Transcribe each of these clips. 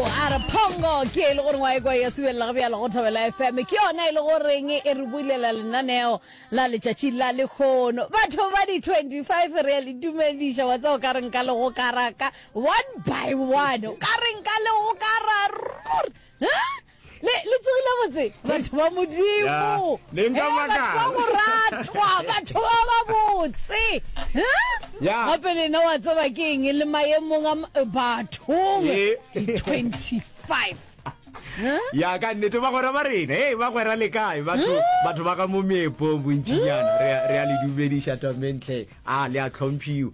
a re phongo ke e le gore ngwa ekwa ya subelela go bjalo go thobela fm ke yona e le goreng e re bulela lenaneo la letšatši la lekgono batho ba di 25 re ya le dumediša wa tseo ka reng ka le go karaka one by one o ka reng ka le go kararur Le, le tsogile botse, batho ba Modimo. Yeah. Le nka Eh, batho ba makala. moratwa, batho ba ba botse. Huh? Yeah. Gape le ena wa tseba ke eng le maemong a m- bathong Eh. di 25. Huh? ya ka nnete bagwera ba rena e bagwera le kae batho batho ba ka mo meepong bontšinyana re a- re a le dumediša tamentle a le a tlhomphiwa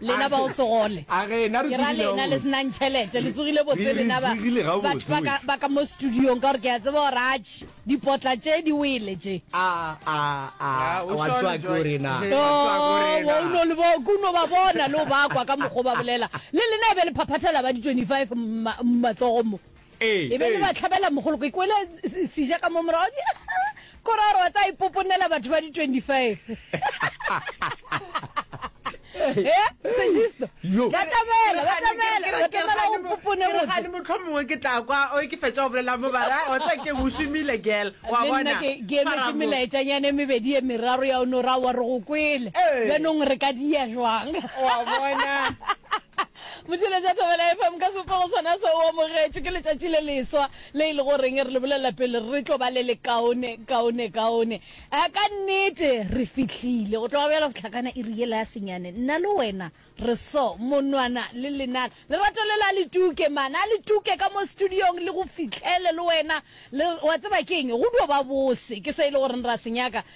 lena ba o segole ke ra lena le senang tšhelete le tsogile botse lena batho ba ka mo studiong ka gore ke a tseba gore atšhe dipotla tše di wele tše uno ba bona le o bakwa ka mokgwa ba bolela le lena e be le phaphathela ba di-25 matsogo mo E be e le bahlabelamogolo, ke kwele seja ka mo morago di kore gore wa tsa ipoponela batho ba di 25 e sejisto ba tamela ba tamela ba tamela o popone motho ga le motlho mongwe ke tla kwa o ke fetsa go bolela mo bara o tla ke bushimile girl wa bona ke ke me ke mela etsa nyane me bedi e meraro ya ono ra wa re go kwele le nong re ka dia jwang wa bona Motšweletša Thobela FM ka sebopego sona se o amogetšwe ke letšatši le leswa le e le goreng re le bolelela pele re tlo ba le lekaone kaone kaone a ka nnete re fihlile go tloga bjalo tlhakana e riela ya senyane nna le wena re so monwana le lenana lerato le la le tuke mana a le tuke ka mo studiong le go fihlele le wena le wa tseba ke eng go dio ba bose ke se e le goreng ra senyaka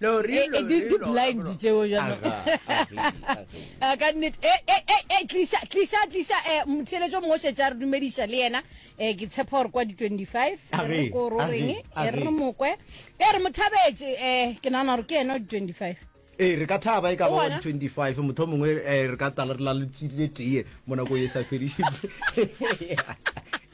Lori, lori, di, di blind tšeo jalo a ka nnete e e e e tliša tliša tliša eh motheletšo mongwe šetša re dumediša le yena eh ke tshepa gore kwa di 25 re ko ro reng e re mokwe e re mothabetše eh ke nana gore ke yena di 25 ee re ka thaba e ka ba 25 motho mongwe eh, re ka tala re la le tee mo nako e sa fediše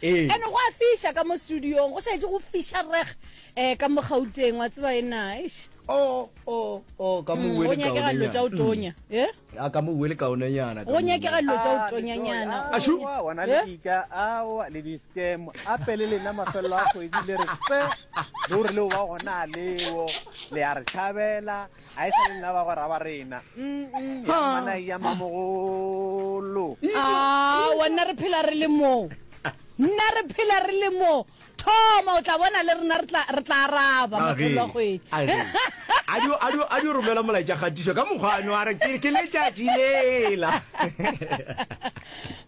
ee. ene go a fiša ka mo studiong go šaetse go fiša reg eh ka mo gauteng wa tseba ena eish o o o ka mo Mm, go wele nyakega dilo tša kaone o tonya e a ka mo wele kaone nyana go nyakega dilo tša o tonyanyana Ashu. Aowa, wana le Eh? dika aowa le di-scam a pele lena mafelelo a kgwedi le re tse ruri leo ba gona a leo le ya re tšhabela a e sa le nna ba go raba rena ya mmana ya mamogolo a wa nna re phela re le moo nna re phela re le moo Thoma, o tla bona le rena re tla, re tla araba, A ge, a ge. A dio, a dio, a dio romela molaetša kgatišo ka mokgwa a no a re, Ke, ke letšatši lela.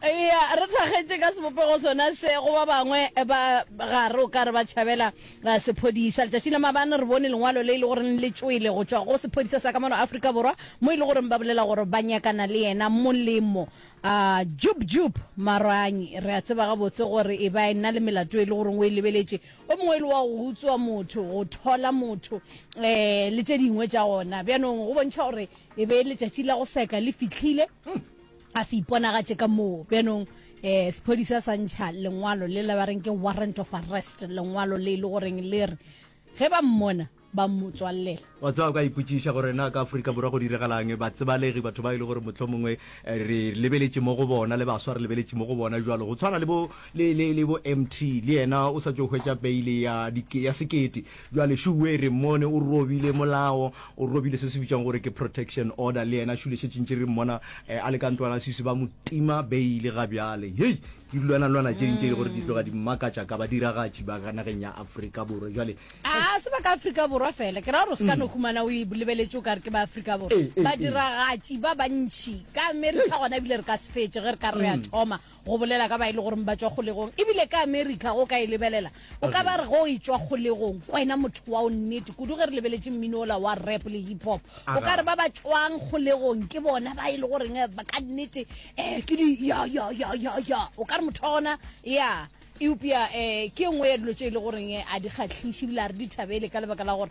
Eya, re thakgetše ka sebopego sona se, go ba bangwe ba gare o ka re ba tšhabela uh, sephodisa. Letšatši la mabane re bone lengwalo le e le goreng le tšwele go tšwa go sephodisa sa ka mono Afrika Borwa, mo e le goreng ba bolela gore ba nyakana le yena molemo. A Jup Jup Marang, re a tseba gabotse gore e ba e na le melato e le goreng o e lebeletše. O mongwe e le wa go utswa motho, go thola motho um le tše dingwe tša gona. Bjanong go bontšha gore e be letšatši la go seka le fihlile, a se iponagatše ka moo. Bjanong um sephodisa sa ntšha lengwalo le la ba reng ke warrant of arrest, lengwalo le e le goreng le re ge ba mmona, ba mmotswallela. Wa tseba, o ka ipotšiša gore na ka Afrika Borwa go diregala'ng? Batsebalegi, batho ba e le gore mohlomongwe eh, re lebeletše mo go bona, le baswa re lebeletše mo go bona jwalo, go tshwana le bo, le, le, le bo MT, le yena o sa tšo hwetša beile ya, ya sekete. Jwale Shuwe re mmone o robile molao, o robile se se bitšwang gore ke protection order, le yena Shule šetše ntše re mmona eh, a le ka ntlwana sisi, ba mo tima beile ga bjale. Hei! Dilwanalwana tše ding tše e le gore di tloga di mmakatša ka badiragatši ba ka nageng ya Afrika Borwa jwale. A se ba ka Afrika Borwa fela, ke ra gore o se ka no humana o e lebeletše o ka re ke ba Afrika Borwa. Eh, eh, eh. Badiragatši ba bantši ka Amerika gona ebile re ka se fetše ge re ka re ya thoma go bolela ka ba e le goreng ba tšwa kgolegong. Ebile ka Amerika go ka e lebelela O ka ba re ge o e tšwa kgolegong, kwena motho wa o nnete, kudu ge re lebeletše mmino ola wa rap le hip hop, o ka re ba ba tšwang kgolegong ke bona ba e le goreng eh, ba ka nnete eh, ke di ya ya ya ya ya, o ka re motho wa gona ya eupša eh, ke e nngwe ya dilo tše e le goreng eh, a di kgahliše ebile a re di thabele ka lebaka la gore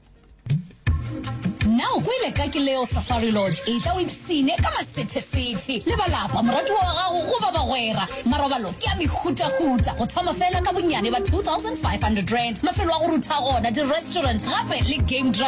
na o kwele ka ke leo safari lodge e tla o ipsine ka masethesethe le balapa moratiwa wa gago go ba bagwera marobalo ke a mehutahuta go thoma fela ka bonnyane ba 2500 rand mafelo a go rutha gona di-restaurant gape le game drive